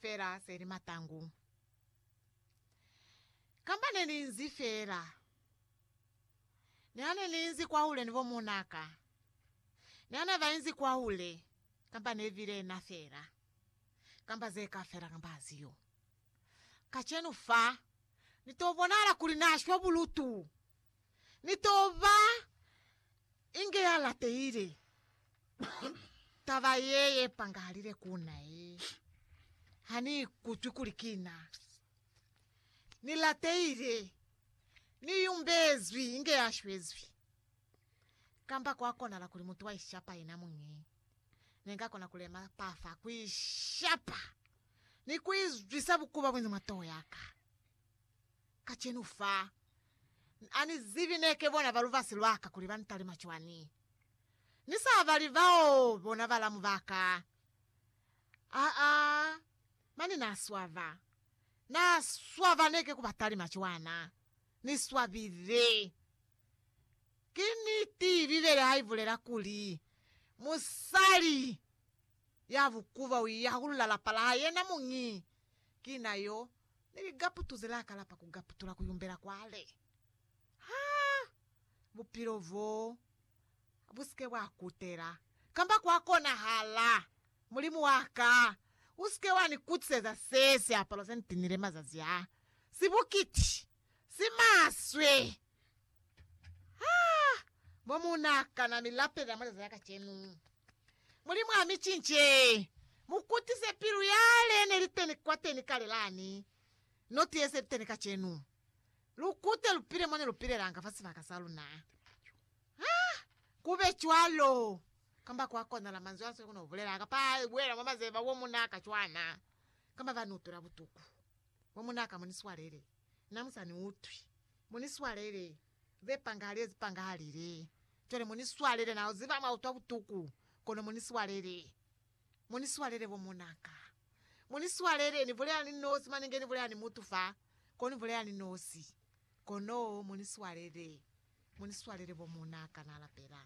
fela se li matangu, kamba ne ni nzi fela. Niha ne ni inzi kwahule ni bomuunaka, niha ne ba inzi kwahule, kamba ne bile na fela, kamba ze ka fela kamba ha ziyo. Kacenu fa, ni to bonahala kuli na shwa bulutu, Ni to ba inge ya latehile taba ye ye pangahalile ku na ye. Ha ni ikutwi kuli ki na. Ni latehile, ni yumbezwi inge ya shwezwi. Kamba kwa konahala kuli mutu wa ishapa yena muñi. Ne nga kona ku lema pa fa ku ishapa ni ku izwisa bukuba bunzi mwa toho ya ka. kacenu fa. Ani zibi neke bona ba lubasi lwaka kuli ba ntalima cwani. Ni sa bali bao bona balamu baka. Aa, mane na swaba. Na swaba neke ku ba talima cwana. Ni swabile. Ki niti Bibele ha ibulela kuli, Musali ya bukuba u iyahulula lapa la hae yena muñi, ki na yo Ni li gaputu ze la kalapa ku gaputula ku yumbela kwa le. Ha bupilo bo bu sike bwa kutela, kamba kwa konahala, Mulimu wa ka, u sike wa ni kutiseza se siapalo se ni tinile mazazi a, si bukiti, si maswe. Ha mo mu na kana mi lapelela mwa leza la kacenu. Mulimu a mi cince, mu kutise pilu yale ne li teni kwateni kale lani, no ti yese li teni kacenu. Lu kute lu pile mo ne lu pilelanga fa sibaka sa luna. Ha ku be cwalo, kamba kwa konala manzwi a sili ku no bulela, kapa a buela mwa mazeba wo mu na ka cwana, kamba ba nutula butuku, wo mu na ka mo ni swalele. Na mu sa ni utwi. Mu ni swalele. Ze pangahalize zi pangahalile. Cwale mu ni swalele. Na ziba mwa utwa butuku, kono mu ni swalele. Mu ni swalele, bo muna ka. Mu ni swalele. Ni bulela ni nosi, mane nge ni bulela ni mutu fa, kono ni bulela ni nosi. Kono mu ni swalele. Mu ni swalele, bo muna ka. Na lapela.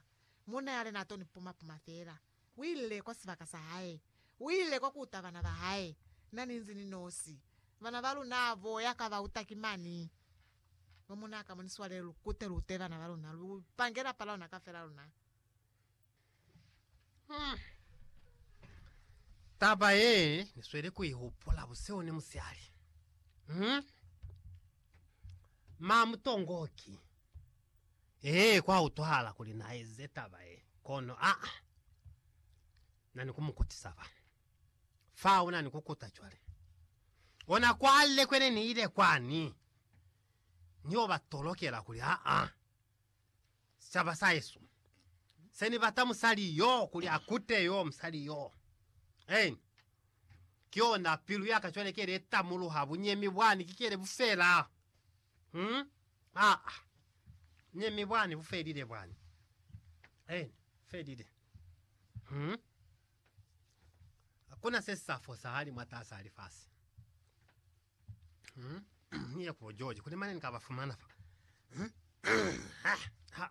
Munna yale na to ni puma-puma fela. Uile kwa sibaka sa hae. Uile kwa kuuta bana ba hae. Na ninzi ni nosi. Bana ba luna bo ya ka ba uta ki mani. Bo muna ka mo ni swale lu kute lu ute bana ba luna. Lu pange lapa la luna kafela luna. Hmm. Taba ye ni sweli ku ihupula busihu ni musiali. Hmm. Ma mutongoki. Ee, kwa utwahala kuli na eze taba ye, kono a na ni ku mu kutisa fa. Fa una ni ku kuta cwale. Ona kwale kwe ne ni ile kwani, ni yo ba tolokela kuli, Aa, sicaba sa hesu, se ni bata musali yo, kuli a kute yo musali yo. Eeni. Ki yona pilu ya ka cwale ke ile itamuluha bunyemi bwani, ki kele bufela. Hmm? Aa. Ne mi bwani bufelile bwani. Eni, felile. Hmm? Hakuna se sa fosahali mwatasa ha lifasi. Hmm? Ni ya kubo George, kuli mane ni ka ba fumana fa. Hmm? Ha, ha.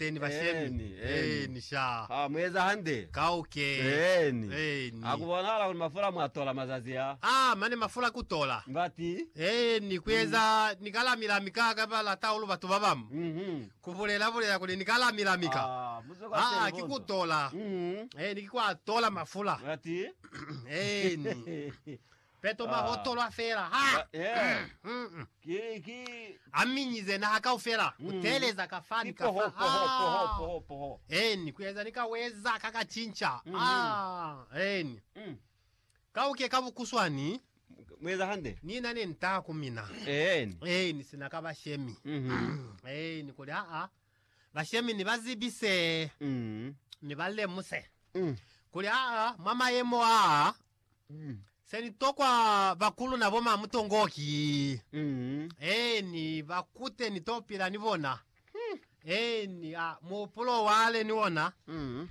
Eeni bashemi. Eeni, eeni. Eeni sha. Ha mu eza hande. Kauke. Eeni. Eeni. Ha ku bonahala kuli mafula mwa tola mazazi a. A mane mafula ku tola. Ngati. Eeni, ku eza ni ka lami-lami ka ka ba lata hahulu batu ba bamu. Mhm. Ku bulela-bulela kuli ni ka lami-lami ka. Aa, mu zwe kwa Aa, ki ku telefonzo. tola. Mhm. Eeni, ki kwa tola mafula. Ngati. Eeni. Peto mwa hotolwa fela ha a minyize naha kaufela ku teeleza ka fani ka fa ha eni ku eza ni ka weza ka ka cinca ha eni ka uke ka bukuswani ni na ne ntaa ku mina eni sina ka bashemi eni kuli haa bashemi ni ba zibise ni ba lemuse kuli haa mwa mayemo aa Mm. Se ni tokwa bakulu na bo ma mutongo ki Mm. eni ba kute ni to pila ni bona. Eni a muhupulo wale ni ona Mm.